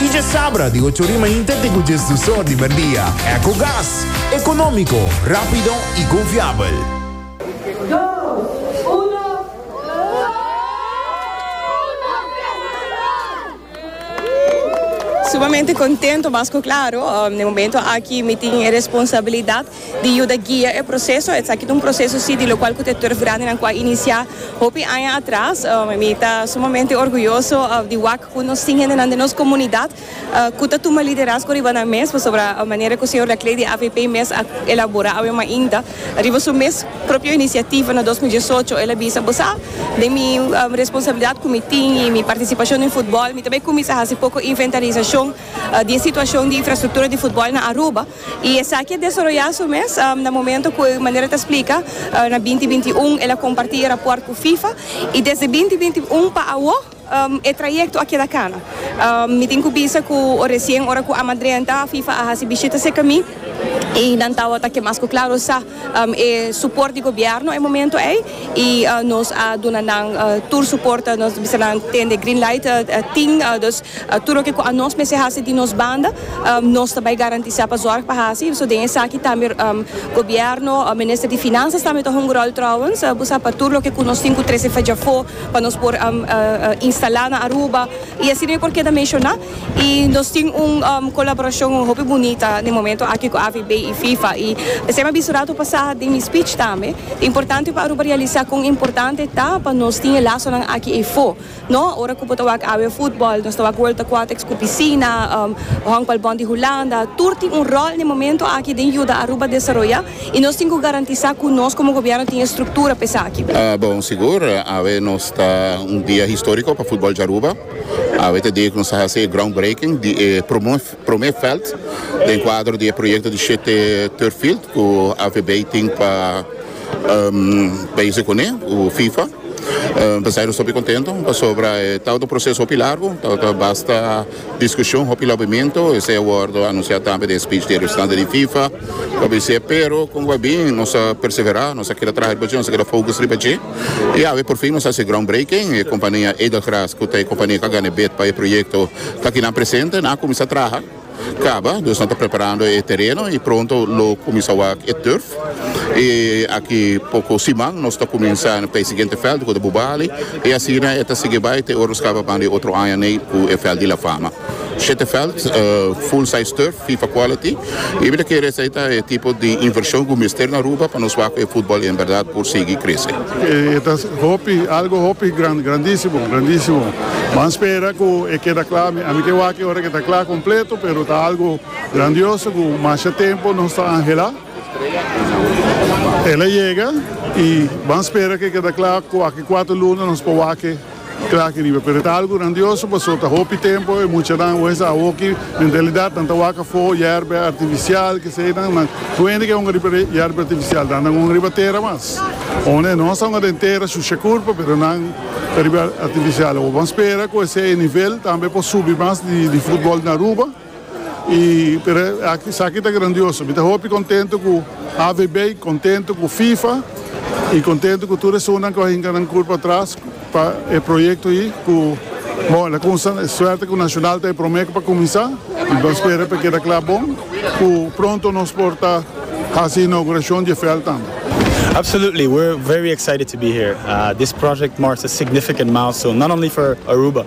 Y dje sabra di ocho rima inte te cu dje sdusor di merdia. Ecogas, economico, rapido y confiabel. Sumamente contento mas cu claro, den momento aki mi tin e responsabilidad di yuda guia e proseso. Esaki ta un proseso si di lokual ku ta e turf grandenan ku a inisiá hopi aña atras. Mi ta sumamente orguyoso di wak ku nos tin hendenan den nos komunidat ku ta tuma liderazgo riba nan mes, pasobra manera ku señor Laclée di avp mes a elaborá awe mainta riba su mes propio inisiativa na dos mil diesocho, el a bisa, Bo sa, den mi responsabilidat ku mi tin i mi partisipashon den futbòl, mi ta bai kuminsá hasi poko inventarisashon di e situashon di infrastruktura di futbòl na Aruba. I esaki a desaroyá su mes na momento ku e manera ta splika na binti binti i un el a kompartí e rapòrt ku Fifa i desde binti binti i un pa awo e trayekto a keda kana. Mi tin ku bisa ku resien ora ku Amadrenta Fifa a hasi bishita serka mi i nan tabata ke mas ku klaro sa e suport di gobierno e momento ey y nos a duna nan tur suport ta nos bisa nan tende green light tin dus tur loke cu anos mester haci di nos banda nos ta bay garantisa pa zorg pa haci so den esaki tambe gobierno minister di finanzas tambe ta hunga rol trouwens bo sa pa tur loke cu nos tin cu trece fedjafo pa nos por instala na Aruba. I asina yo por keda menshoná. I nos tin un kolaborashon hopi bunita den momentu aki ku AVB i Fifa. I p'esei mi a bisa rato pasá den mi spich tambe, ta importante pa Aruba realisá kon importante ta pa nos tin e lasonan aki afó. No, ora ku bo ta wak awe futbòl, nos ta wak World Aquatics ku pisina, Honkbalbond di Hulanda, tur tin un ròl den momentu aki den yuda Aruba desaroyá. y nos tin cu garantisa cu nos como gobierno tin estructura pa esaki. Bon, sigur, awe nos ta un dia historico pa futbol di Aruba. Awe ta e dia cu nos ta haci e groundbreaking di e prome veld den cuadro di e proyecto di shete turf field cu AVB tin pa bezig cune cu fifa. P'esei nos ta hopi contento pasobra e ta un proceso hopi largo, ta basta Discusion hopi lobimentu esei a wordo anuncia tambe den speech di e representante di Fifa lo bis'e pero con guai bin nos a persevera nos a keda traha riba dje nos a keda focus riba dje y awe por fin nos a haci e groundbreaking e compania Edelgras cu ta e compania cu a gana e bid pa e proyecto ta aki nan presente nan a cuminsa traha caba dus nan ta preparando e tereno y pronto lo cuminsa wak e turf y aki poco siman nos ta cuminsa p'e siguiente veld cu ta Bubali. E asina e ta sigui bai te ora skaba banda e otro aña nei ku e vèlt di La Fama. Shete vèlt, full size turf, fifa quality. Mi mira ku e resta ei ta e tipo di invershon ku mester na Aruba pa nos wak ku e futbòl en bèrdat por sigui krese. E ta hopi, algu hopi gran, grandísimo, grandísimo. Ban spera ku e keda kla. Mi ami ke wak e ora ku e ta kla kompleto, pero ta algu grandioso ku masha tempu nos ta anhelá. El a yega y ban spera cu e keda cla cu aki cuatro luna nos por wak-e cla aki riba. Pero e ta algo grandioso paso ta hopi tempo e muchanan wes a hoki mentalidad nan ta wak afo yerbe artificial kesedan nan kuende ke honga riba yerbe artificial dan nan honga riba tera mas o ne nos ta honga den tera shusha curpa pero nan ta riba artificial awor ban spera cu esey nivel tambe por subi mas di football na Aruba. Y pero esaki ta grandioso. Mi ta hopi contento cu AVB, contento cu FIFA y contento cu tur esunnan cu a hinca nan cur patras pa e proyecto ayi cu bon el a cunsha suerte cu Nacional ta e prome cu pa cuminsa y bo spera pa e keda cla bon cu pronto nos por ta haci inauguracion di e veld tambe. Absolutely, we're very excited to be here. This project marks a significant milestone not only for Aruba